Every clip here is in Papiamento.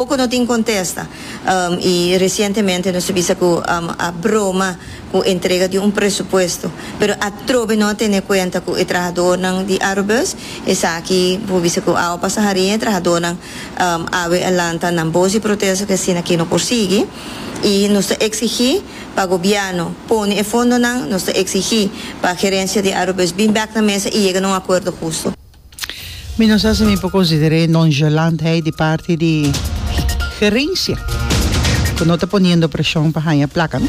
Poko no tin contesta y recientemente nos a bisa cu a broma cu entrega di un presupuesto pero atrobe no a tene cuenta cu e trahadornan di Arobus esaki bo bisa cu awe pasa harin e trahadornan awe a lanta nan bos di protesta cu asina ki no por sigui y nos ta exigi pa gobierno pone e fondonan nos ta exigi pa gerencia di Arobus bin bek na mesa y yega na un acuerdo husto. Mi no sa si mi por consider'é nonchalantheid di parti di gerencia cu no ta poniendo presion pa haña placa no.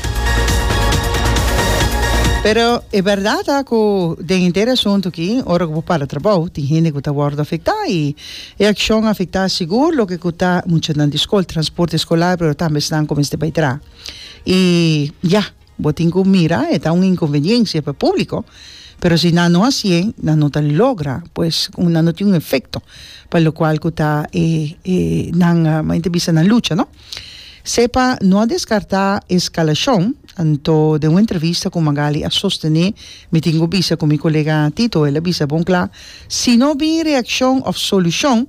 Pero e berdad ta cu den henter e asuntu aki ora cu bo para trabou tin hende cu ta wordo afectá y e accion a afectá sigur loke cu ta muchanan di scol, transporte escolar pero tambe esnan cu mester bay traha y ya. Bo tin cu mira e ta un inconveniencia pa e publico, pero si nan no hacié, nan no ta logra, pues como nan no tin un efecto pa locual cu ta e e nan mi a ta bisa nan lucha, no? Cepa no a descarta e scalacion, anto den un entrevista cu Magaly a sostené, Mi tin cu bisa cu mi colega Tito, el a bisa bon cla, si no bin reaccion of solucion,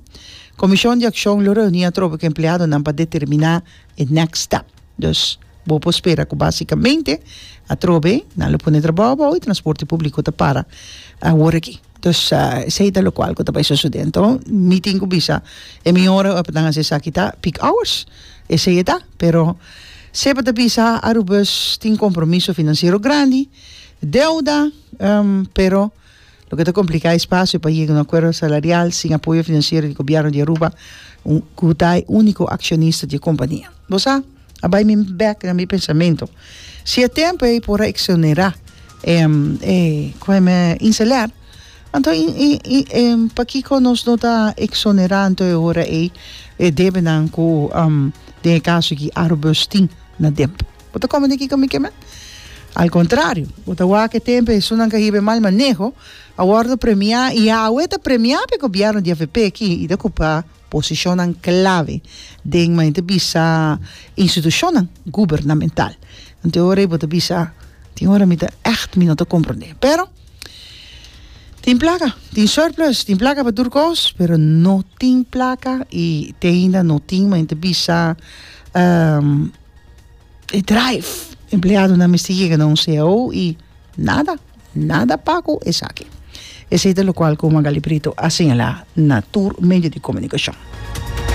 Comision di Accion lo reuní atrobe cu empleadonan pa determina e next step. Dus bo por spera cu basicamente atrobe nan lo pone trabao abao y transporte publico ta para awor aki. Dus esey ta locual cu ta bay sucede. Enton mi tin cu bisa e mi ora pa nan haci esaki ta peak hours. Esey e ta. Pero sey pa ta bisa Arubus tin compromiso financiero grandi, deuda, pero. Loke ta kompliká e spasio pa yega un akuerdo salarial sin apoyo finansiero di gobièrnu di Aruba, ku ta e úniko akshonista di e kompania. Bo sa, a bai mi bèk na mi pensamentu, si e tempu ei por a eksonerá e Inselèr, anto pakiko nos no ta eksonerá anto e ora ei e debenan ku den e kaso aki Arubus tin na demp. Bo ta kome den kiko mi ke men? Al kontrario, bo ta wak e tempu e hesunnan ke a hiba e mal maneho a wòrdu premiá i Yahweh ta premiá pa e gobièrnu di avp aki i ta kupa posishonnan klave den, mayor ta bisa, institushonnan gubernamental. Anto e ora ei bo ta bisa, Tin ora mi ta ègt mi no ta komprondé. Pero, tin plaka, tin surplus, tin plaka pa tur kos, pero no tin plaka i te ainda no tin, mayor ta bisa. E drive. Empleadonan mester yega na un cao i nada, nada pa ku esaki. Esei ta lokual ku Magali Brito a señalá na tur medio di komunikashon.